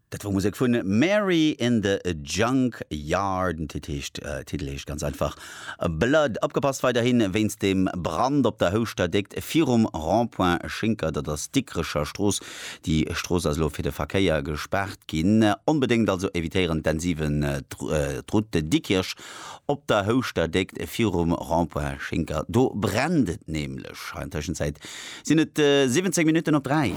Dat wor Musek vun Mary in the Junk Yard. Den Titel heescht, Titel heescht ganz einfach Blood. Opgepasst weiderhin wéinst dem Brand op der Houschter Déckt virum Rond-point Schinker. Dat ass d'Dikrecher Strooss. Déi Strooss ass elo fir de Verkéier gespaart ginn. Onbedéngt also evitéieren d'N7 d'Route Dikkirch op der Houschter Déckt virum Rond-point Schinker. Do brennt et nämlech. An Tëschenzäit Sinn et 17 Minutten op 3.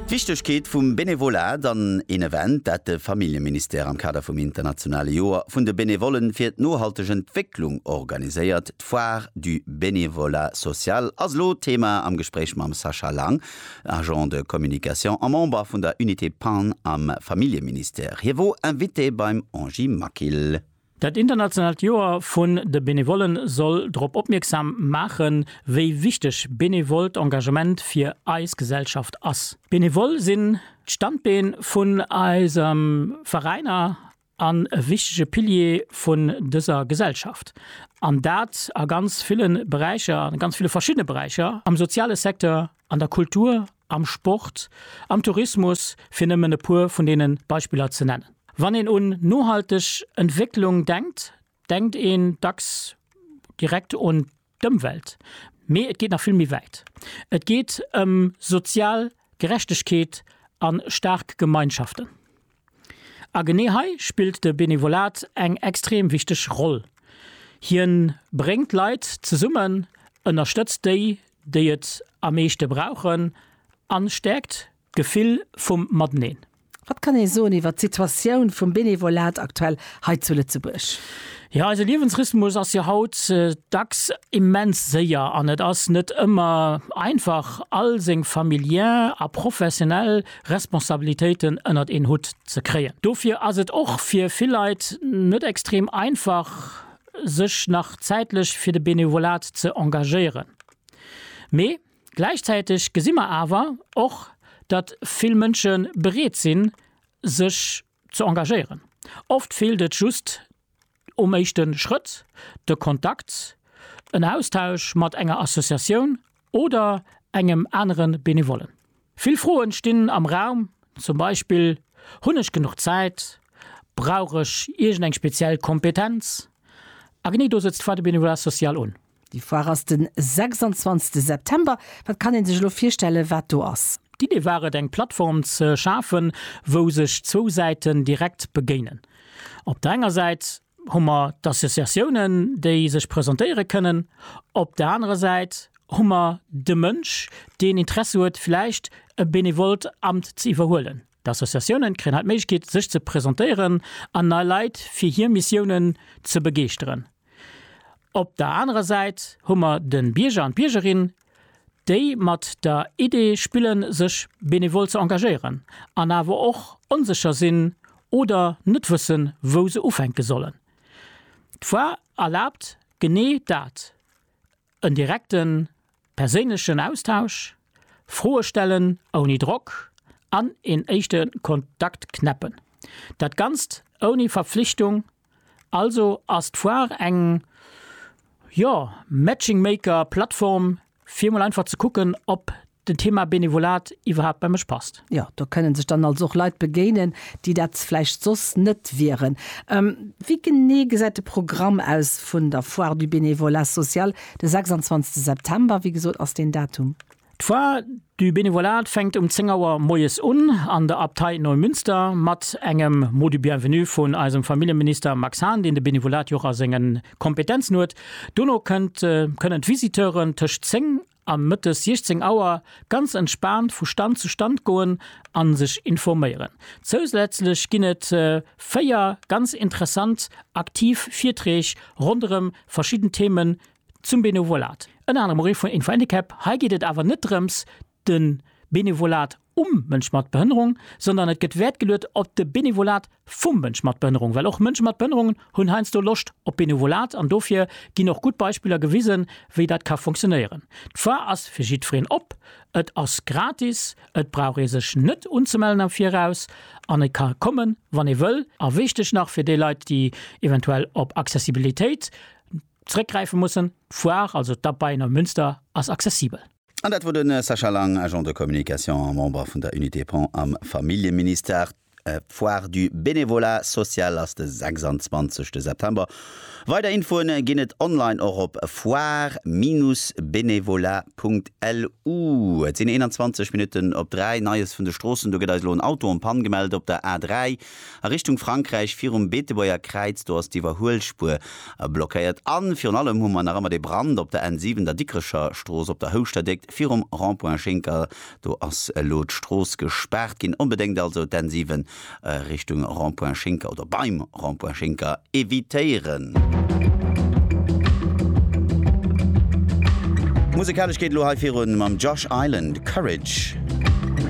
D'Wichtegkeet vum Benevolat an een Event, dat de Familljeministère am Kader vum internationale Joer vun de Benevollen fir d'nohalteg Entwécklung organiséiert. D'Foire du bénévolat social ass elo Thema am Gespréich mam Sascha Lang, Agent de communication a Member vun der Unité Pan am Familljeministère. Hie wor Invité beim Angie Maquil. Dat internationaalt Joer vun de Benevolle soll drop opmierksam maachen, wéi wichteg benevollt Engagement fir eis Gesellschaft ass. D'Benevolle sinn d'Standbeen vun eisem Veräiner an e wichtege Pilier vun dëser Gesellschaft, an dat a ganz ville Beräicher, a ganz ville verschiddene Beräicher, am soziale Secteur, an der Kultur, am Sport, am Tourismus, fir nëmmen e puer vun deene Beispiller ze nennen. Wann een un nohalteg Entwécklung denkt, denkt een dacks direkt un d'Ëmwelt, mee et geet nach vill méi wäit. Et geet ëm sozial Gerechtegkeet a staark Gemeinschaften. A genee hei spillt de Benevolat eng extrem wichteg Roll. Hien bréngt Leit zesummen, ënnerstëtzt déi, déi et am meeschte brauchen an stäerkt d'Gefill vum Mateneen. Wat kann ee soen iwwert d'Situatioun vum Benevolat aktuell hei zu Lëtzebuerg? Jo, eise Liewensrhythmus ass jo haut dacks immens séier an et ass net ëmmer einfach all seng familiär a professionell Responsabilitéiten ënnert een Hutt ze kréien. Dofir ass et och fir vill Leit net extrem einfach, sech nach zäitlech fir de Benevolat ze engagéieren. Mee gläichzäiteg gesi mer awer och, datt vill Mënsche bereet sinn, sech ze engagéieren. Oft feelt et just um éischte Schrëtt, de Kontakt, en Austausch mat enger Associatioun oder engem anere Benevollen. Vill Froen stinn am Raum, zum Beispill, Hunn ech genuch Zäit? Brauch ech iergend eng speziell Kompetenz? A genee do sëtzt d'Foire du Bénévolat social un. Déi Foire ass den 26 September. Wat kann een sech elo virstellen wat do ass? D'Idee war et eng Plattform ze schafen wou sech zwou Säiten direkt begéinen. Op der enger Säit hu mer d'Associatiounen déi sech presentéiere kënnen, op der anerer Säit hu mer de Mënsch deen Interesse huet vläicht e benevollt Amt ze iwwerhuelen. D'Associatiounen kréien hei d'Méiglechkeet sech ze presentéieren an nei Leit fir hir Missiounen ze begeeschteren. Op der anerer Säit hu mer de Bierger an d'Biergerin, déi mat der Idee spille sech benevol ze engagéieren an awer och onsécher sinn oder net wëssen, wou se ufänke sollen. D'Foire erlaabt genee dat, en direkte perséinlechen Austausch, Froe stellen ouni Drock an een éischte Kontakt knäppen. Dat Ganzt ouni Verpflichtung Also ass d'Foire eng, jo, Matching Maker Plattform fir mol einfach ze kucken ob den Thema Benevolat iwwerhaapt bei mech passt. Jo, do kënne sech dann also och Leit begéinen, déi dat vläicht soss net wieren. Wéi genee gesäit de Programm aus vun der Foire du Bénévolat social de 26 September? Wéi gesot ass deen Datum. D'Foire du bénévolat fänkt um 10 Auer moies un an der Abtei Neumünster mat engem Mot du bienvenu vun eisem Familljeminister Max Hahn, deen de Bénévolat jo och a sengen Kompetenzen huet. Dono kënnt kënnen d'Visiteuren tëscht 10 a mëttes 16 Auer ganz entspaant vu Stand zu Stand goen a sech informéieren. Zousätzlech ginn et 4 ganz interessant aktiv Virträg ronderëm verschidden Themen Zum Benevolat, ënner anerem och ee vun Info Handicap, hei geet et awer net drëms de Benevolat um Mënsch mat Behënnerung, sondern et gëtt Wäert geluet op de Benevolat vum Mënsch mat Behënnerung, well och Mënsche mat Behënnerungen hunn heiansdo Loscht op Benevolat an dofir ginn och gutt Beispiller gewisen, wéi dat ka funktionéieren. D'Foire ass fir jiddwereen op, et ass gratis, et brauch ee sech net unzemellen am Viraus an e ka kommen, wann ee wëll. A wichteg nach fir déi Leit, déi eventuell op Accessibilitéit. Zréckgräife mussen. D'Foire, also d'Abeien am Münster, ass accessibel. An dat wor de Sascha Lang, Agent de communication a Member vun der Unité Pont am Familljeministère. D'Foire du bénévolat social ass de 26 September. Weider Infoen ginn et online och op foire-bénévolat.lu. Et sinn 21 Minutten op 3. Neies vun de Stroossen, Do gëtt eis elo en Auto en Panne gemellt op der A3. a Richtung Frankräich virum Beetebuerger Kräiz, do ass d'Iwwerhuelspuer blockéiert a virun allem hu mer nach ëmmer dee Brand op der N7, der Dikrecher Strooss op der Houschterdéckt virum Rond-point Schinker, do ass elo d'Strooss gespaart ginn. Onbedéngt also d'N7 Richtung Rond-point Schinker oder beim Rond-point Schinker evitéieren. Musekalesch geet elo hei virun mam Josh Island, Courage.